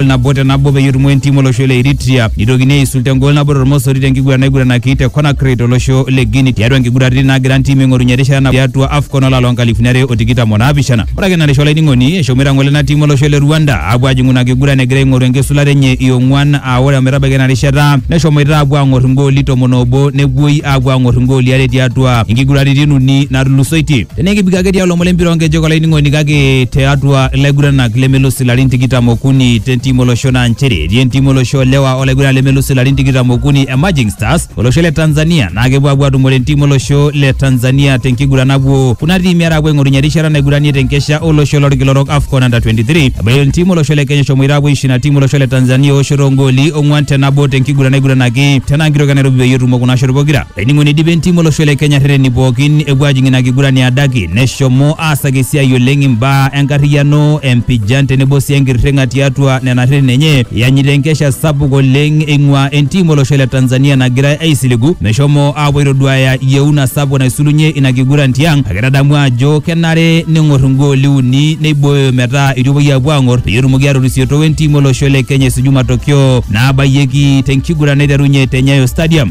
engol nabo te nabo peyie etumo entim olosho le Eritrea nitokini aisul te ngol nabo tormosori te nkiguran naiguranaki te Conakry tolosho le Guinea tiatua nkiguraritin naagira ntimi aing'orunye erishata nabo tiatua AFCON olari loo nkalifuni are o tikitam o naapishana. Ore ake narisha olainining'oni eshomoita ngole ina tim olosho le Rwanda aapuo aajing'u ina kiguran egira aing'oru enkisulata enye e ong'uan aa ore ometabaiki ina rishata neshomoita aapuo aang'or igooli tomon oobo nepuoi aapuo aang'or igooli are tiatua inkiguraritin uni naatulusoitie. Tenaa ekipik ake tialo lomon lempira onkejek olainining'oni kake tiatua ilaiguranak lemelus ilarin tikitam okuni tentim olosho naa nchere etii entim olosho olewa olaiguranani lemelus ilarin tikitam okuni e Emerging Stars olosho le Tanzania naa kepuo apuo atumore entim olosho le Tanzania tenkiguran napuo kuna tiimi are apuo aing'orunye erishata naiguranie tenkesha olosho lorkila orok AFCON Under 23 ebaiki entim olosho le Kenya eshomoita apuo aisho ina tim olosho le Tanzania eoshoto ongooli ong'uan te nabo tenkiguran naiguranaki tena nkitoki e Nairobi peyie etumo kuna shot pokira Laining'oni eidipa entim olosho le Kenya rreteni pookin epuo ajing ina kiguran e adaki neshomo aasaki esiai oleng imbaa enkarriyiano, empijan tenebo sii enkirring'a tiatua nena rreteni enye eanyita enkesha sapuk oleng eing'uaa entim olosho le Tanzania nagirai aisiligu meshomo aapuo aitoduaaya yieuna sapuk naisulunye ina kiguran tiang kake tadamu ajo kenare neng'or igooli uni neibooyo metaa eitu epuoi aapuo aang'or peyie etumoki atorisiotoo entim olosho le Kenya esuju matokeo naabayieki te nkiguran naiterunye te Nyayo Stadium.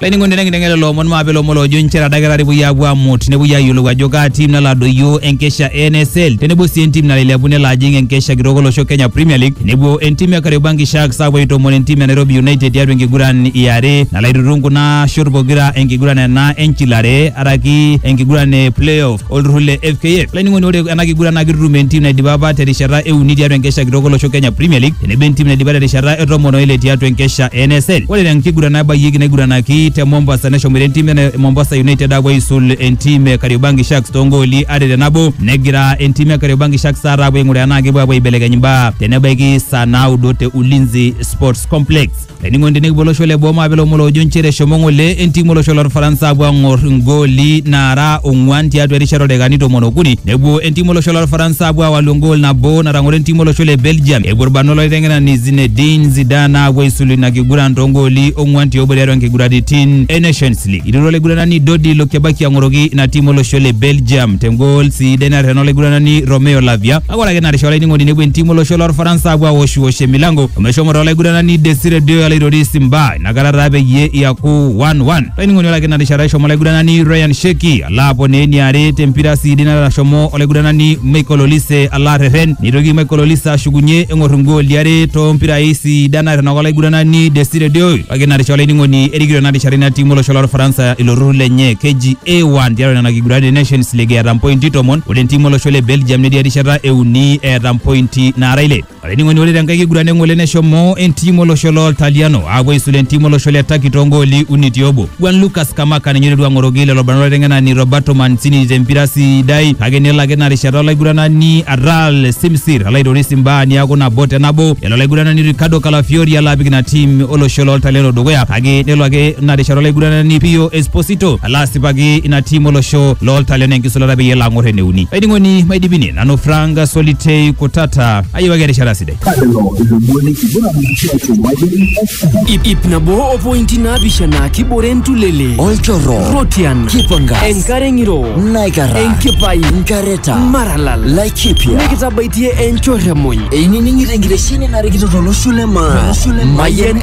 Laining'oni tenkiteng'ena lelo omon maape lomon loojo inchere adakitari epuoi aapuo aamut nepuoi aayiolou ajo kaa tim nalo adoyio enkesha e NSL tenebo sii entim nalo ailepu nelo ajing enkesha kitok olosho Kenya Premier League tenebo entim e Kariobangi Sharks aapuo aitoomon entim e Nairobi United tiatua enkiguran e are nalo aitutum kuna shot pokira enkiguran ena enchilare araki enkiguran e playoff. olturrur le FKF. Laining'oni ore ena kiguran naa kitutum entim naidipa apa terishata e uni tiatua enkesha kitok olosho Kenya Premier League tenebo entim naidipa terishata e tomon oile tiatua enkesha e NSL. Ore te nkiguran nabayieki naiguranaki te Mombasa neshomoita entim e Mombasa United aapuo aisul entim e Kariobangi Sharks toongooli are te nabo negira entim e Kariobangi Sharks taata aapuo aing'uraa enaa kepuo aapuo aibelekeny imbaa tenebaiki saa naudo te Ulinzi Sports Complex. Eningo tenekipwo olosho le boo mape ilomon loojo nchere eshomo ng'ole entim olosho lorfaransa apuo ang'or igooli naara ong'uan tiatua erishata oldakikani tomon okuni. Nepuo entim olosho lorfaransa apuo awalu egool nabo natang'oro entim olosho le Belgium. Epuo irbanot lolaiteng'enani Zinedine Zidane apuo aisulu ina kiguran too gooli ong'uan ti obo tiatua nkiguraritin e Nations League. Eiturua olaiguranani Dodi Lokebaki ang'oroki ina tim olosho le Belgium te gool siidai naterena olaiguranani Romeo Lavia. Kake ore ake ina rishata olainining'oni nepuo entiim olosho lorfaransa apuo awoshwosh emilango omeshomo toolaiguranani Desire Deo olaitoris Simba inakata taa peyie iaku 1-1. Olainining'oni ore ake ina rishata eshomo olaiguranani Ryan Sheki alo aponaa eniare tempira siidi nashomo olaiguranani Michael Olise alo arrerren neitoki Michael Olise ashukunye eng'or ingooli are toompirai sidan nairrinyaka olaiguranani Desire Deo kake ina rishata olainining'oni erikito ina rishata ina tiim olosho lorfaransa ilo turrur lenye keji A1 tiatua nena kiguraritin e Nations League eeta mpointi tomon Ore entiim olosho le Belgium netii erishata e uni eeta mpointi naara ile. Olainining'oni ore tenkae kiguran eng'ole neshomo entiim olosho loo Ltaliano aapuo aisula entiim olosho le Turkey too gooli uni ti obo. Juan Lucas Scamacca ninye oiterua ang'oroki lelo barnot olaiteng'enani Roberto Mancini te mpira sidai kake nelo ake ina rishata olaiguranani Aral Simsir alo aitoris imbaa niaku nabo te nabo elo olaiguranani Ricardo Calafiori alo apik ina tiim olosho loo Ltaliano dukuya kake nelo ake ina rishata olaiguranani Pio Esposito ala asipaki ina tiim olosho looltalion enkisulata peyie elo ang'or eneuni. Laining'oni maidipini nanu Frank Solitei Kutata ayiewaki erishata sidai. Lelo ilomoni kiguran tiatua Mayian FM. Ip, ip nabo o pointi naapishana kibore entulele olchorro rotian kipangas enkare ng'iro naikara enkipai nkareta maralal laikipia nikitabaitie enchorremony einining'ito enkitesheni narikito tolosho le maa Mayian